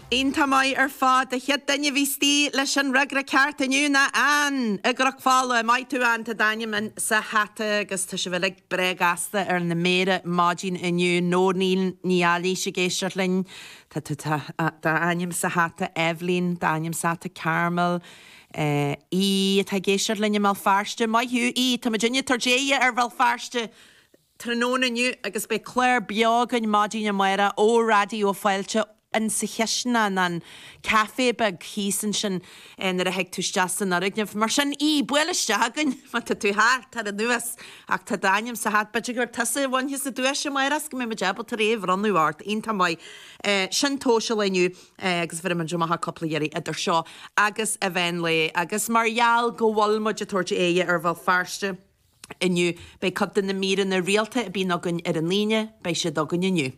Iontach maith ar fad. An chéad duine a bhí istigh leis an fhreagra ceart inniu ná Ann i gCroc Pháil. Maith thú Ann, tá d'ainm in sa hata agus tá sibh uilig breá gasta ar na méara ar maidin inniu. Nóirín Ní Eilís ag éisteacht linn, tá tá d'ainm sa hata. Eibhlín, tá d'ainm sa hata. Carmel, í atá ag éisteacht linn i mBéal Feirste. Maith thú, tá muidinne ag tabhairt aghaidh ar Bhéal Feirste! tráthnóna inniu agus beidh clár beo againn maidin amárach ó Raidió Fáilte in sa chistineán, an café beag thíos ansin nuair a théann tú isteach san fhoirgneamh. Mar sin, buail isteach againn má tá tú thart, tar anuas ach tá d'ainm sa hata. B'fhéidir gur tusa a bhainfeas an duais amárach is go mbeidh muid ábalta é a bhronnadh ort, iontach maith. Sin tomhas an lae inniu agus bhéarfaidh muid amach cúpla iarraidh idir seo agus meán lae agus mar gheall go bhfuil muid ag tabhairt aghaidh ar Bhéal Feirste, Inniu, beidh cuid de na míreanna rialta a bhíonn againn ar an Aoine, beidh siad againn inniu.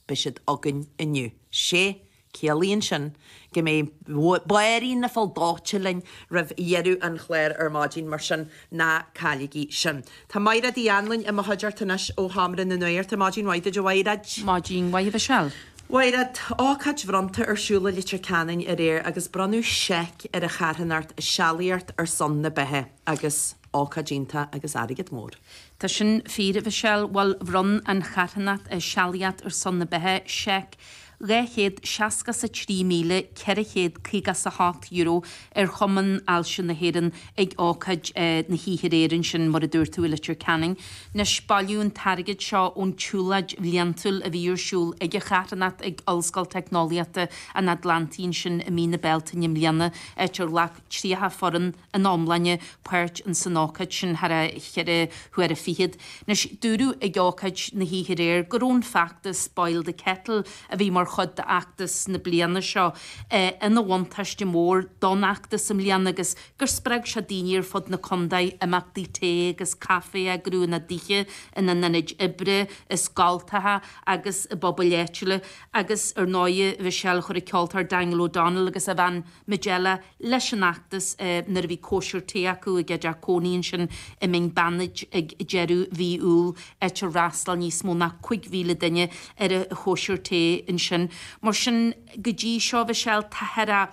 Beidh siad againn inniu. Sea, ciallaíonn sin go mbeidh Báirín na Faille Dóite linn roimh dheireadh an chláir ar maidin, mar sin ná cailligí sin. Tá Máiread Uí Annlainn i mo chuideachta anois ó Sheomra na Nuachta. Maidin mhaith duit, a Mháiread! Maidin mhaith, a Mhichelle! Mháiread, Ócáid bhronnta ar siúl i Leitir Ceanainn aréir agus bronnadh seic ar a charthanacht Sealaíocht ar Son na Beatha agus. Ócáid iontach agus airgead mór. Tá sin fíor, a Mhichelle. Bhuel, bhronn an charthanacht Sealaíocht ar Son na Beatha seic dhá chéad seasca 's a trí míle ceithre chéad caoga 's a hocht euro ar Chumann Ailse na hÉireann ag ócáid na hoíche aréir ansin, mar a dúirt tú, i Leitir Ceanainn. Anois, bailíodh an t-airgead seo ón tsiúlóid bhliantúil a bhí ar siúl ag an charthanacht ag Ollscoil Teicneolaíochta an Atlantaigh ansin i mí na Bealtaine i mbliana, áit ar ghlac tríocha foireann ina iomláine, páirt in san ócáid sin thar cheithre huaire fichead. Anois, dúradh ag ócáid na hoíche aréir go raibh an feachtas Boil the Kettle, a bhí mar chuid d'fheachtas na bliana seo, ina bhuntáiste mór don fheachtas i mbliana agus gur spreag sé daoine ar fud na contae imeachtaí tae agus caife a eagrú ina dtithe, ina n-ionaid oibre, i scoltacha agus i bpobail áitiúla agus ar ndóighe bhí sé le cur ag an cheoltóir Daniel O'Donnell agus a bhean, Majella leis an fheachtas nuair a bhí cóisir tae acu ag a dteach cónaí ansin i Mín Beannaid ag deireadh mhí Iúil, áit ar fhreastal níos mó ná 5,000 duine ar a chóisir tae ansin. Mar sin, go dtí seo, Mhichelle, tá thar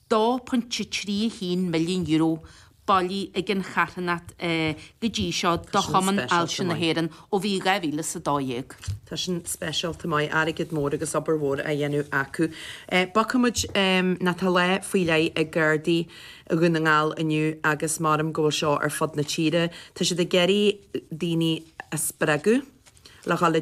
£2.31 milliún, bailithe ag an charthanacht go dtí seo do Chumann Ailse na hÉireann ó bhí 2012. Tá sin speisialta maith, airgead mór agus obair mhór á dhéanamh acu. Bogfaidh muid, tá lá faoi leith ag Gardaí Dhún na nGall inniu agus measaim go bhfuil seo ar fud na tíre, tá siad ag iarraidh daoine a spreagadh le dhul i